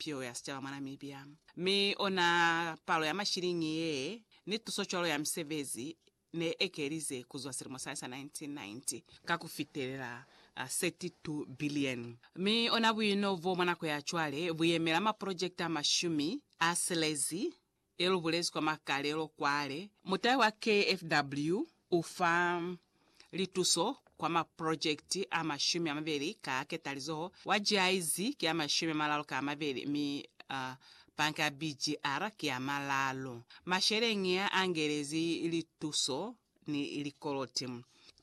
pilo ya sicaba mwa Namibia, mi ona palo ya mashiliñi ye ni tuso cwalo ya misebezi ne ekelize kuzwa silimo sani sa 1990 ka ku fitelela 32 bilioni, mi ona buino bo mwa nako ya cwale bu yemela maprojekiti a mashumi a silezi Ye lu bulezi kwa makalelo kwale, mutai wa KFW u fa lituso kwa maprojekiti a mashumi a mabeli ka ketalizoho, wa GIZ ki a mashumi a malalu ka mabeli mi Banka ya BGR ki a malalu. Masheleñi a, a ngelezi lituso ni likoloti.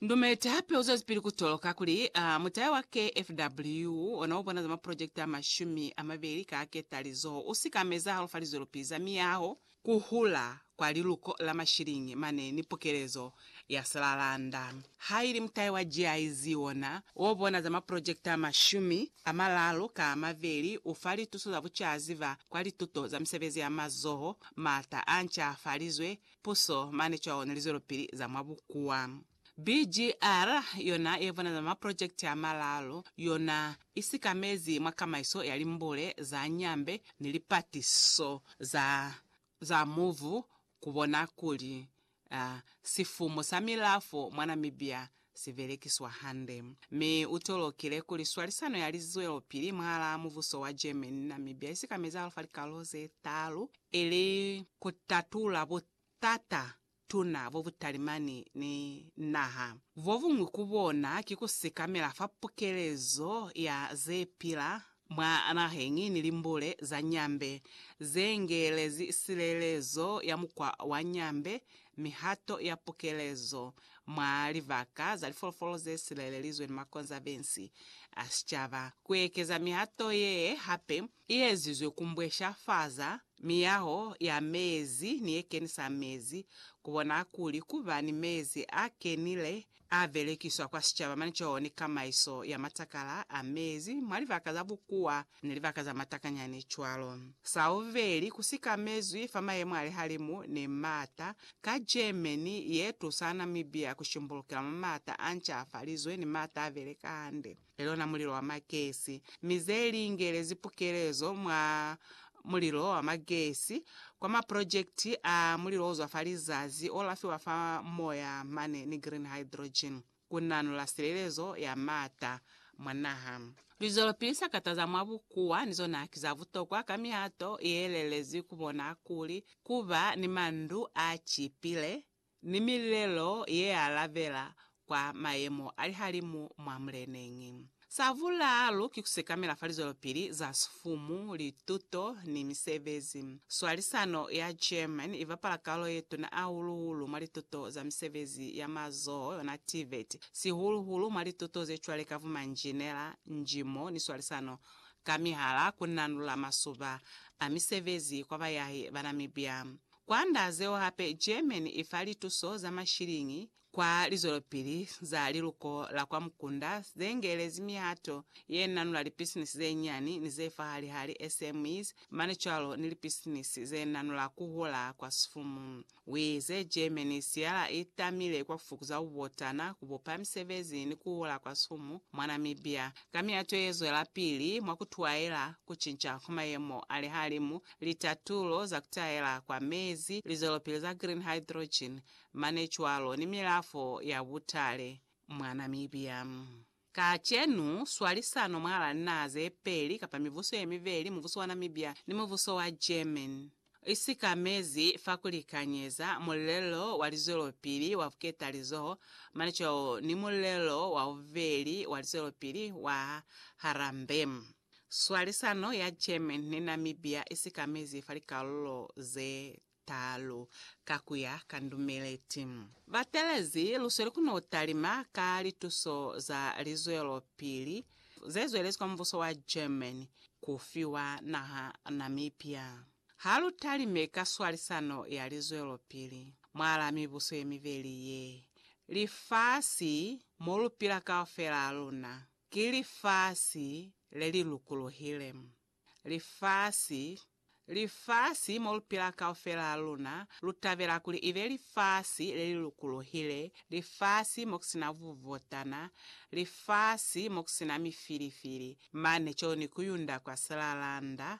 Ndumeti hape uzwezipili kutoloka kuli a mutaya wa KFW ona ubona za maprojekiti amashumi amabeli ka ketalizoho usika ama ezahalo fa lizwelopihi za miyaho, kuhula kwa liluko la mashilingi mane ni pukelezo ya silalanda. Haili mutaya wa GIZ ona obona za maprojekiti amashumi amalalu ka amabeli ufa lituso za bucaziba kwa lituto za misebezi ya mazoho, maata ancafalizwe puso mane cwalo ni lizwelopili za mwa bukuwa. BGR yona ye vona za maprojekiti a malalu yona i sikamezi mwa kamaiso ya limbule za Nyambe ni lipatiso za za mubu ku bona kuli, a, sifumu sa milafo mwa Namibia si belekiswa hande, mi u tolokile kuli swalisano ya li zwelopili mwahalaa mubuso wa Germany ni Namibia i sikamezi hahulu fa likalolo ze taalu, ili ku tatula butata tuna bo bu talimani ni naha. Bo buñwi ku bona ki ku sikamela fa pukelezo ya ze pila Mwa naheñi ni limbule za Nyambe ze ngeelezi silelezo ya mukwa wa Nyambe, mihato ya pukelezo mwa libaka za lifolofolo ze silelelizwe ni makonzavensi a sicaba. Ku ekeza mihato ye hape i ezizwe ku mbwesha faza miyaho ya mezi ni ye kenisa mezi, ku bona kuli ku ba ni mezi a kenile A belekiswa kwa sicaba mane co ni kamaiso ya matakala a mezi mwa libaka za bukuwa ni libaka za matakanyani cwalo. Sa bubeli, ku sikamezwi fa mayemo a lihalimu ni maata ka Germany ye tusa Namibia ku shimbulukela mwa maata a ncafalizwe ni maata a beleka hande. Lelona mulilo wa magesi, mi ze lingelezi pukelezo mwa mulilo wa magesi kwa maprojekiti a mulilo ozwa fa lizazi olafiwa fa moya mane ni green hydrogen ku nanula silelezo ya maata mwa naha. Lizwelopili za kataza mwa bukuwa ni zona ki za butokwa ka mihato ye lelezi ku bona kuli ku ba ni mandu a cipile ni milelo yealabela kwa mayemo a lihalimu mwa muleneñi. Sa vulalu ki kusekamela fa lizwelopili za sifumu, lituto, ni misebezi. Swalisano ya German ibapala kalulo yetuna ahulu-hulu mwa lituto za misebezi ya mazoho yona TVET, sihulu-hulu mwa lituto zecwale ka bumanjinela, njimo, ni swalisano ka mihala, kunanula masuba a misebezi kwa bayahi ba Namibia. Kwand'a zeo hape, Germany i fa lituso za mashiliñi kwa lizwelopili za liluko la kwa mukunda ze ngelezi mihato ye nanula lipisinisi ze nyani ni ze fahali-hali, SMEs, mane cwalo ni lipisinisi ze nanula ku hula kwa sifumu. U ize, Germany i siyala i tamile kwa ku fukuza bubotana, ku bupa misebezi ni ku hula kwa sifumu mwa Namibia ka mihato ye zwelapili mwa ku tuaela ku cinca kwa mayemo a lihalimu litatulo za kutaela kwa mezi, lizwelopili za green hydrogen, mane cwalo ni milafo ya butale mwa Namibia. Kacenu, swalisano mwalaa linaha zepeli kapa mibuso yemibeli, mubuso wa Namibia ni mubuso wa German, isikamezi fa kulikanyeza mulelo wa lizwelopili wa buketalizoho mane cwalo ni mulelo wa bubeli wa lizwelopili wa Harambee. Swalisano ya German ni Namibia i sikamezi fa likalulo ze talu ka ku ya ka ndumeleti. Batelezi lusweli ku no talima ka lituso za lizwelopili ze zwelezi kwa mubuso wa German ku fiwa naha Namibia. Ha lu talime ka swalisano ya lizwelopili mwalaa mibuso ye mibeli ye, lifasi mo lu pila kaufela luna Ki lifasi le li lukulohile. Lifasi, lifasi mo lu pila kaufela ha luna, lu tabela kuli ibe lifasi le li lukulohile, lifasi mo ku si na bubotana, lifasi mo ku si na mifilifili, mane co ni ku yunda kwa silalanda,